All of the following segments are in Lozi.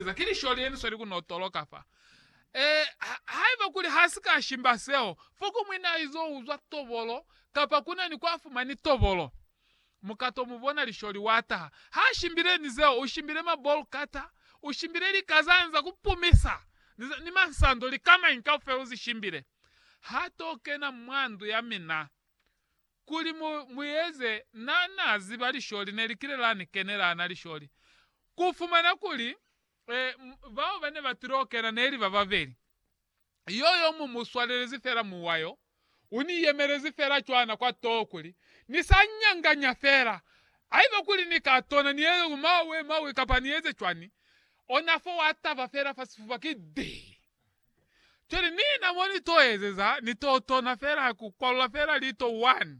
Eza ki lisholi yeni sweli kuno toloka fa. Ee, ha, haiba kuli ha si ka shimba seo, foko mwi na izo uzwa tobolo, kapa kuna ni kwa fumani tobolo. Mu ka to mu bona lisholi wa taha. Ha shimbile ni zeo, u shimbile ma boll cutter, u shimbile lika za nza ku pumisa, ni za, ni mansando, lika mañi kaufela u zi shimbile. Ha to kena mwa ndu ya mina. Kuli mu, mu eze, Na, Na ziba lisholi ne li kile la ni kenela ana lisholi, ku fumana kuli, e, bao ba ne ba tilo kena neli ba babeli. Yo, yo mu mu swalelezi fela muwa yo. U ni yemelezi fela cwana kwa toho kuli, Ni sa nyanganya fela. Haiba kuli Ni ka tona ni eze ku mawe, mawe, kapa ni eze cwani, ona fo wa taba fela fa sifuba, ki dii. Cwale nina mo ni to ezeza ni to tona fela ku kwalula fela lito one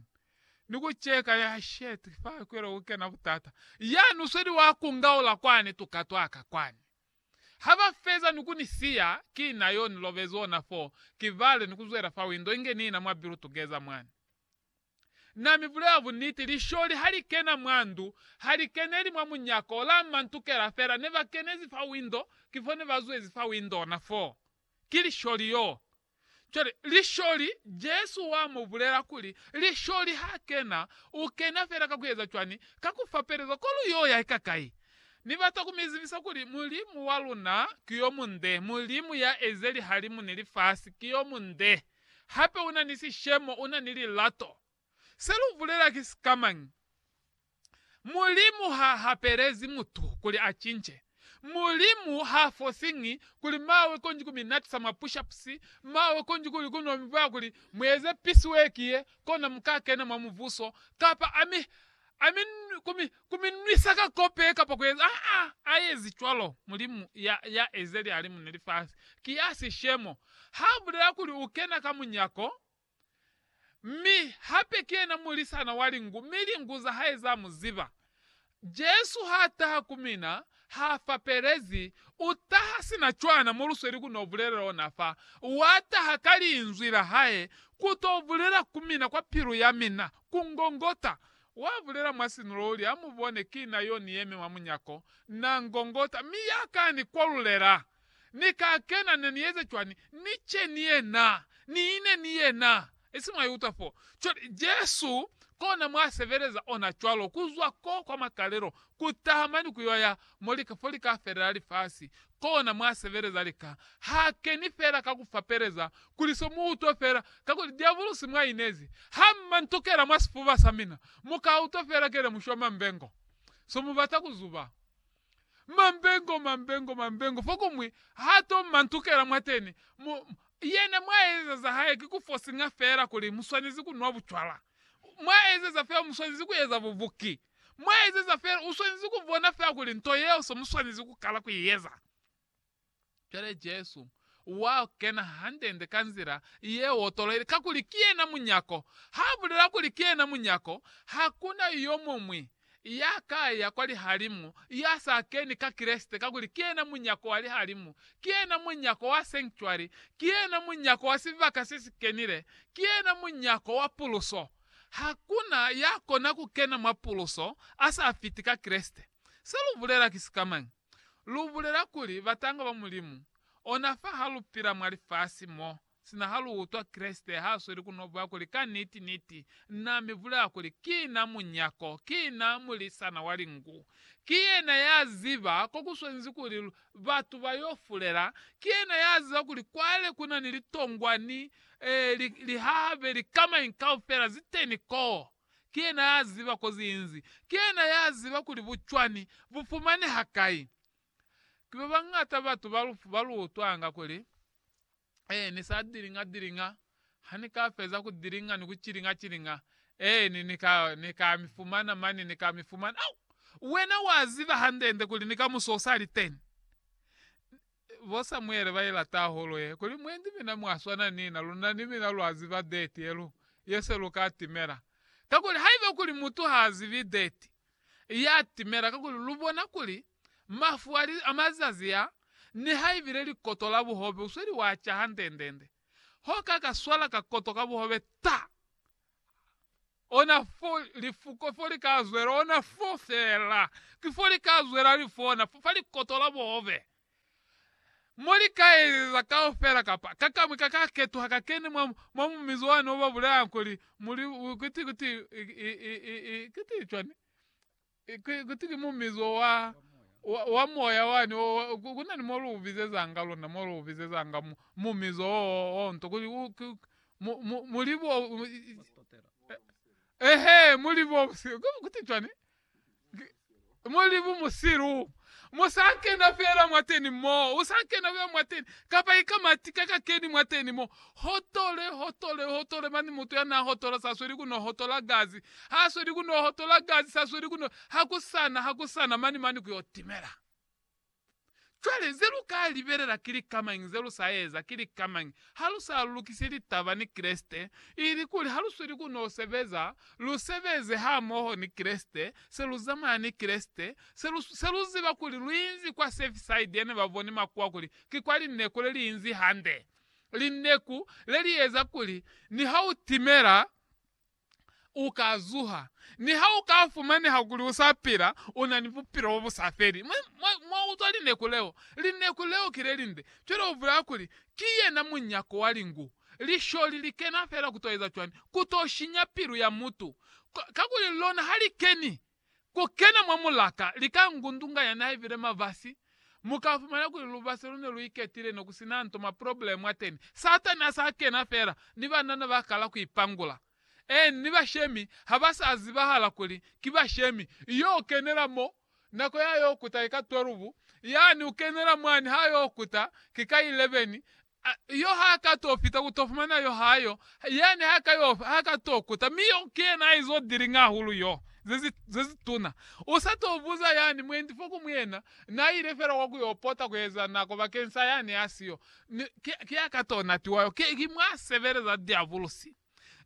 ni ku cheka ya shit fa kwela ku kena butata. Ya nu sweli wa ku ngaula kwani tuka twa ka kwani. Ha ba feza ni ku ni siya, ki na yo ni lobezi ona foo, ki vale ni ku zwela fa window inge nina mwa bilu tugeza mwani. Na mi bulela buniti, lisholi ha li kena mwa ndu, ha li keneli mwa munyako la mantukela fela. Ne ba kenezi fa window, ki fo ne ba zwezi fa window na foo. Ki lisholi yoo. Cwale, lisholi, Jesu wa mu bulela kuli, lisholi ha kena, u kena fela ka ku eza cwani? Ka ku fapeleza ko lu y'o ya ika kai. Ni bata ku mi zibisa kuli Mulimu wa luna ki yo munde, Mulimu ya eze lihalimu ni lifasi, ki yo munde. Hape una ni sishemo, una ni lilato. Se lu bulela ki sikamañi? Mulimu ha hapelezi mutu kuli a cince. Mulimu ha fosiñi kuli mawe konji ku mi natisa mwa push-ups, mawe konji kuli ku no mi bwaya kuli mu eze piece work ye, kona mu ka kena mwa Mubuso, kapa a mi a mi, ku mi, ku mi nwisa ka kope kapa ku eza. Ha a, a ezi cwalo. Mulimu ya, ya eze lialimu ni lifasi. Ki ya sishemo. Ha bulela kuli u kena ka munyako, mi hape ki yena mulisana wa lingu, mi lingu za hae za mu ziba. Jesu ha taha ku mina, ha fapelezi, u taha sina cwana mo lu sweli ku no bulelela ona fa. Wa taha ka Linzwi la Hae ku to bulela ku mina kwa pilu ya mina. Ku ngongota. Wa bulela mwa sinulo uli, Ha mu bone, ki na yo ni yemi mwa munyako. Na ngongota, mi ya ka ni kwalulela. Ni ka kena, ne ni eza cwani? Ni ce ni yena. Ni ine ni yena. Isi mwa iutwa fo. Cwale, Jesu, kona mwa sebeleza ona cwalo, ku zwa ko kwa makalelo, ku taha mani ku yo ya mo lika, fo lika felela lifasi. kona mwa sebeleza lika ha keni fela ka ku fapeleza kuli so mu utwe fela, kakuli diabulusi mwa inezi ha mma ntukela mwa sifuba sa mina, mu ka utwa fela kele mu shwa mambengo. So mu bata ku zuba. Mambengo, mambengo, mambengo, fokuñwi ha to mma ntukela mwateni, mu, yena mwa eza za hae ki ku forcinga fela kuli mu swanezi ku nwa bucwala. Mwa ezeza fela mu swanezi ku eza bubuki. Mwa ezeza fela, u swanezi ku bona fela kuli nto yeo se mu swanezi ku kala ku i eza. Cwale Jesu wa kena hande-nde ka nzila ye otoloile, kakuli ki yena munyako. Ha bulela kuli ki yena munyako, ha ku na yo muñwi ya ka ya kwa lihalimu ya sa keni ka Kreste, kakuli ki yena munyako wa lihalimu, ki yena munyako wa sanctuary, ki yena munyako wa sibaka se si kenile, ki yena munyako wa puluso. Hakuna ya kona ku kena mwa puluso a sa fiti ka Kreste. Se lu bulela ki sikamañi? Lu bulela kuli batanga ba Mulimu, ona fa ha lu pila mwa lifasi mo, sina ha lu utwa Kreste ha sweli ku no bwa kuli, Ka niti, niti, Na mi bulela kuli, Ki Na Munyako, ki Na Mulisana wa Lingu. Ki yena ya ziba ko ku swanezi kuli batu ba yo fulela. Ki yena ya ziba kuli kwale ku na ni litongwa ni Ee, li, li hahabe likamai kaufela zeteni koo. Ki Yena ya ziba ko zi inzi. Ki Yena ya ziba kuli bucwani bu fumaneha kai. Ki babañata batu ba lu, ba lu utwanga kuli, Ee, ni sa dilinga-dilinga. Ha ni ka feza ku dilinga ni ku cilinga-cilinga, Ee, ni, ni ka, ni ka mi fumana mani, ni ka mi fumana. Au! Wena wa ziba hande-nde kuli ni kamuso u sa li teni. Bo Samuele ba ila taholo ye kuli, Mwe ndi mina mwa swana ni na, luna ni mina lwa ziba date ye lu ye se lu ka timela. Kakuli haiba kuli mutu ha zibi date ya timela, kakuli lu bona kuli mafu a li a mazazi a, nihaibile likoto la buhobe usweli wa ca hande-nde-nde, ho ka ka swala ka koto ka buhobe ta! ona fo lifuko fo li ka zwela ona fo fela ki fo li ka zwela li fona fo fa likoto la bobe mo li ka ezeza kaufela kapa kakamwi ka ka ketuha ka kene mwa mwa mumizi wani o ba bulela kuli muli kiti kiti kiti cwani Kuti ki mumizo wa, wa, wa moya wani o, ku, ku na ni mo lu u bizezanga lona, mo lu u bizezanga mu, mumizo o, o, o nto, kuli u, ku, mu, mu, mu li bo, ehe, mu li bo, ku, kuti cwani? Ki, mu li bu musilu. Mo sa kena fela mwateni mo, u sa kena fela mwateni, kapa i ka mati ka ka keni mwateni mo. Hotole, hotole, hotole, mani mutu ya na hotola sa sweli ku no hotola gazi, ha sweli ku no hotola gazi, sa sweli ku no, ha ku sana, ha ku sana, mani, mani ku yo timela. Cwale, ze lu ka libelela ki lika mañi ze lu sa eza, ki lika mañi, ha lu sa lukisi litaba ni Kreste, ilikuli ha lu sweli ku no sebeza, lu sebeze hamoho ni Kreste, se lu zamaya ni Kreste, Se lu, se lu ziba kuli lu inzi kwa Surfside ne ba boni makuwa kuli ki kwa lineku le li inzi hande, lineku le li eza kuli ni ha u timela u ka zuha, ni ha u ka fumaneha kuli u sa pila, u na ni bupilo bo bu sa feli. Mwa, mwa, mwa utwa lineku leo? Lineku leo ki le linde. Cwale u bulela kuli, Ki yena munyako wa lingu. Lisholi li kena fela ku to eza cwani? Ku to shinya pilu ya mutu. Ka, kakuli lona ha li keni Ku kena mwa mulaka, lika ngundunga ya na ibile mavasi, mu ka fumana kuli lubasi lu ne lu iketile ne ku sina nto mwa probleme mwa teni. Satani a sa kena fela ni banana ba kala ku ipangula, eeni, ni bashemi ha ba sa zibahala kuli ki bashemi. Yo kenela mo, nako ya yo kuta ki ka 12, yani u kenela mwani ha yo kuta ki ka 11, A yo ha ka to fita ku to fumana yo ha yo, yani ha ka yo, ha ka to kuta. Mi yo ki yena a izo dilinga hahulu yo, ze zi, ze zi tuna. U sa to buza yani mwendi fo ku mu yena, na ile fela kwa ku yo pota ku eza nako bakeng sa yani a si yo. Ni, ki, ki a ka to natiwa yo. Ki, ki mwa sebeleza Diabulosi.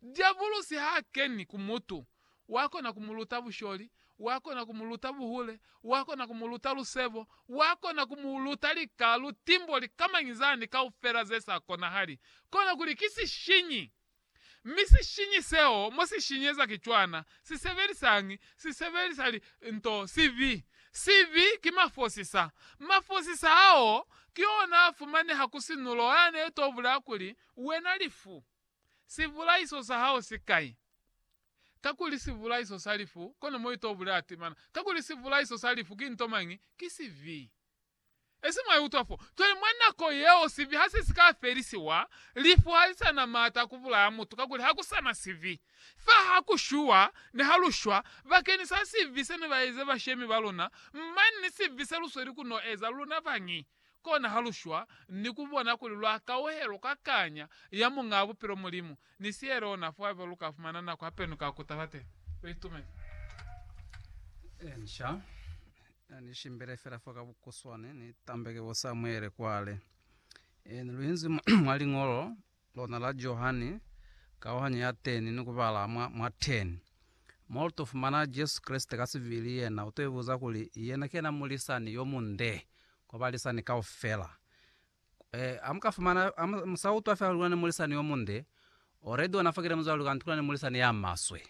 Diabulusi ha keni ku mutu, wa kona ku mu luta busholi, wa kona ku mu luta buhule, wa kona ku mu luta lusebo, wa kona ku mu luta lika, lutimbo, likamañi zani kaufela ze sa konahali. Kona kuli ki sishinyi. Mi sishinyi seo mo si shinyeza ki cwana, si sebelisañi? Si sebelisa li, nto, sibi. Sibi ki mafosisa. Mafosisa ao ki ona a fumaneha ku sinulo, a ne to bulaya kuli, Wena lifu. Sivulaiso sa hao si kai? Kakuli sivulaiso sa lifu, kono mo ito bulela timana. Kakuli sivulaiso sa lifu ki nto mañi? Ki sibi. Esi mwa iutwa fo. Cwale mwa nako yeo sibi ha se si ka felisiwa, lifu ha li sa na maata a ku bulaya mutu, kakuli ha ku sa na sibi. Fa ha ku shuwa, ne ha lu shwa, bakeñi sa sibi se ne ba eze bashemi ba luna, mane ni sibi se lu sweli ku no eza luna bañi? Kona ha lu shwa ni ku bona kuli lwa kauhelwa kwa kanya ya Muñaa Bupilo Mulimu, ni sihelo ona fo haiba lu ka fumana nako hape ni ka kuta fateni. Lu itumezi? Inca ni shimbile fela fo ka bukuswane, ni tambeke bo Samuele kwale. Ni lu inzi mwa Liñolo Lona la Johane, kauhanyo ya teni ni kubala mwa, mwa teni. Mo luto fumana Jesu Kreste ka sivili, yena uto ibuza kuli yena ki yena mulisani yo munde kwa balisani kaufela. E, amuka fumana, amu, amusa utwa fela luli kuna ni mulisani yo munde, already ona fakile muzwale luli kanti kuna ni mulisani ya maswe.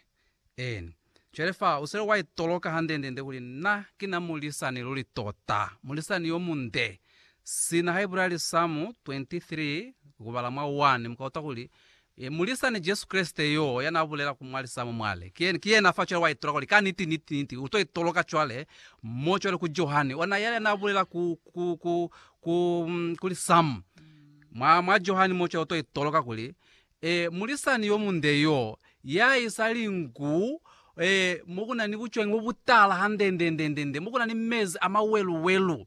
En. Cwale fa usele wa itoloka hande-nde-nde kuli na ki na mulisani luli tota, mulisani yo munde. Sina ha ibula Lisamu 23, kubala mwa 1, mu ka utwa kuli, E, mulisani Jesu Kreste yo ya na bulela ku mwa Lisamu mwa li, Ki, ki yena fa. Cwale wa itoloka kuli, Kaniti, niti, niti, u to itoloka cwale mo, cwale ku Johane, ona yale ya na bulela ku, ku, ku, ku, ku Lisamu, mwa, mwa Johane mo, cwale u to itoloka kuli, Ee, mulisani yomunde yoo, yaisali nku, ee, mokuna ni bucwengi bobutala handendendendende, mokuna ni mezi amaweluwelu.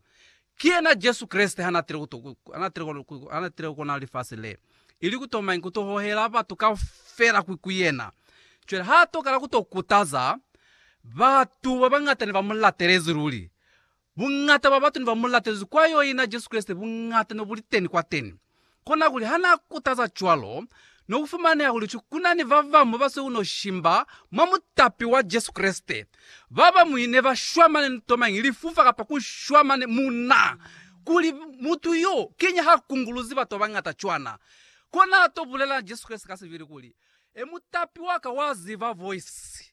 Ki yena Jesu Kreste hanaatile kuto, hanaatile kono, hanaatile kukona lifasi le, ili kutomañi kuto hohela batu kaufela ku, ku yena. Cwale haatokala kuto kutaza, batu babañata ne bamulatelezi luli. Buñata bwa batu neba mulatezi kwa yo ina Jesu Kreste buñata nebuliteni kwateni. Kona kuli hana kutaza cwalo, nokufumaneha kuli ki kunani babamu baseuno shimba mwa mutapi wa Jesu Kreste. Babañwi neba shwamane nto mañi, lifufa kapa kushwamane muna, kuli mutu yo kiñi ha kunguluzi batu babañata cwana. Kona ato bulela Jesu Kreste ka sibili kuli, E mutapi waka wa ziba voisi.